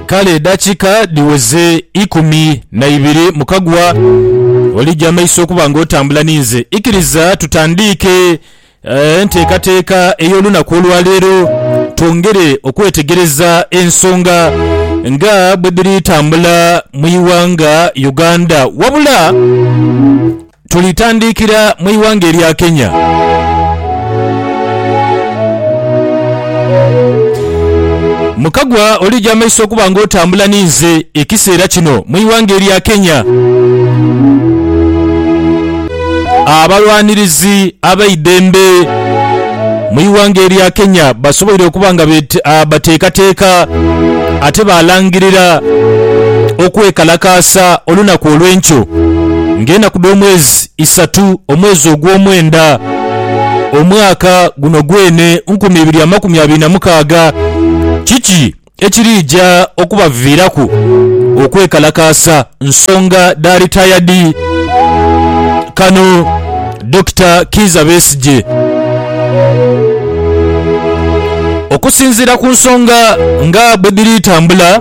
Kale edakika dhiweze ikumi na ibiri mu kagwa olija amaiso okuba nga otambula ni nze. Ikiriza tutandiike enteekateeka ey'olunaku olwa leero twongere okwetegereza ensonga nga bwe dhiri tambula mu ighanga Uganda. Wabula. Tulitandikira mu ighanga erya Kenya. Mukagwa olija amaiso okuba nga otambula ni nze ekiseera kino mu ighanga erya Kenya. Abalwanirizi abeidembe. Mu ighanga erya Kenya basoboire okuba nga bateekateeka ate baalangirira okwekalakaasa olunaku olw'enkyo ng'enaku dh'omwezi isatu omwezi ogw'omwenda omwaka guno gwene nkumi ibiri amakumi abiri na mukaaga. Kiki ekiriija okubaviiraku okwekalakaasa nsonga dha ritayadi. Kano Dokita Kiiza Besigye okusinziira ku nsonga nga bwedhiri tambula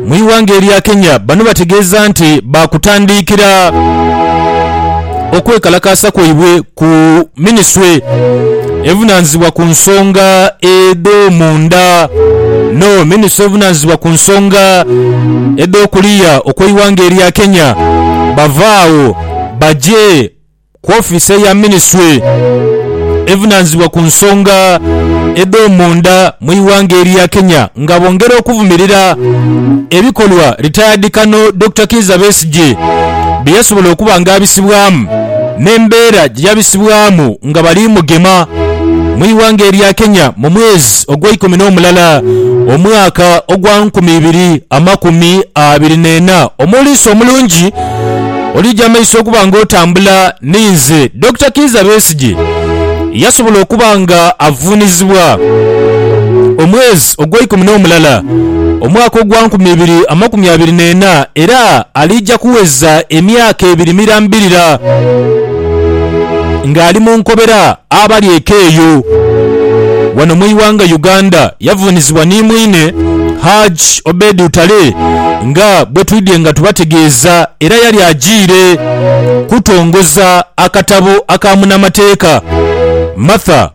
mu ighanga erya Kenya bano bategeeza nti baakutandiikira okwekalakaasa kwaibwe ku Minisitule evunaanyizibwa ku nsonga edh'omunda no Minisitule evunaanyizibwa ku nsonga edh'okuliya okw'eighanga erya Kenya bava agho baje ku ofiisi eya Minisitule evunaanyizibwa ku nsonga edh'omunda mu ighanga erya Kenya nga bongera okuvumirira ebikolwa Retired Colonel Dokita Kiiza Besigye bye yasobola okuba nga abisibwamu. n'embeera gye yabisibwamu nga bali mugema mu ighanga erya Kenya mu mwezi ogweikumi n'omulala omwaka ogwa nkumi ibiri amakumi abiri n'ena. Omuliisa omulungi olija amaiso okuba nga otambula ni nze, Dokita Kiiza Besigye, yasobola okuba nga avuunizibwa omwezi. ogweikumi n'omulala, omwaka ogwa nkumi ibiri amakumi abiri n'ena, era aliija kuweza emyaka ebiri mirambirira ng'ali mu nkobera abali eka eyo. Wano mu ighanga Uganda yavuunizibwa ni mwine Hajj Obed Utale nga bwetwidhye nga tubategeeza era yali ajiire kutongoza akatabo aka munamateeka Martha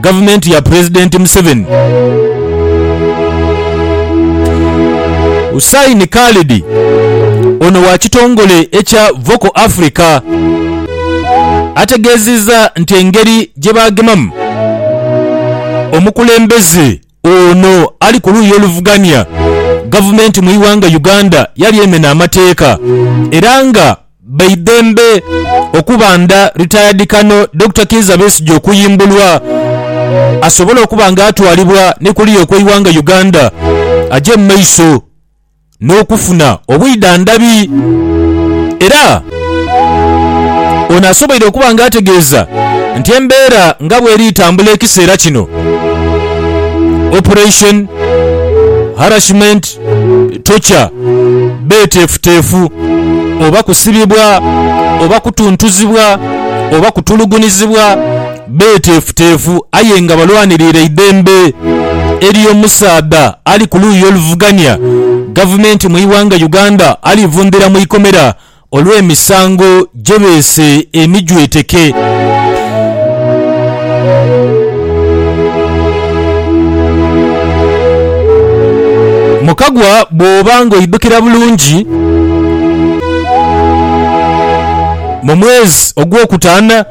Gavumenti ya Pulezidenti Museveni, Hussain Khalid ono wa kitongole ekya Vocal Africa ategeezizza nti engeri gye baagemamu omukulembeze Ono ali ku luuyi oluvugania gavumenti mu ighanga Uganda yali emena amateeka era nga baidhembe okubanda retired Colonel Dokita Kiiza Besigye okuyimbulwa asobole okuba nga atwalibwa ni kuliya okweighanga Uganda aje mu maiso. n'okufuna obwidhandhabi. Era ono asoboire okuba nga ategeeza nti embeera nga bweri tambula ekiseera kino, Operation Harassment Torture beeteefuteefu oba kusibibwa oba kutuntuzibwa oba kutulugunizibwa. Beeteefuteefu aye nga balwanirira eidhembe ery'omusaadha ali ku luuyi oluvugania gavumenti mu ighanga Uganda alivundhira mu ikomera olw'emisango gye beese emijweteke. Mukagwa bw'oba ng'oidhukira bulungi. mu mwezi ogwokutaana,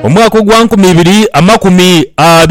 omwaka ogwa nkumi ibiri amakumi abiri.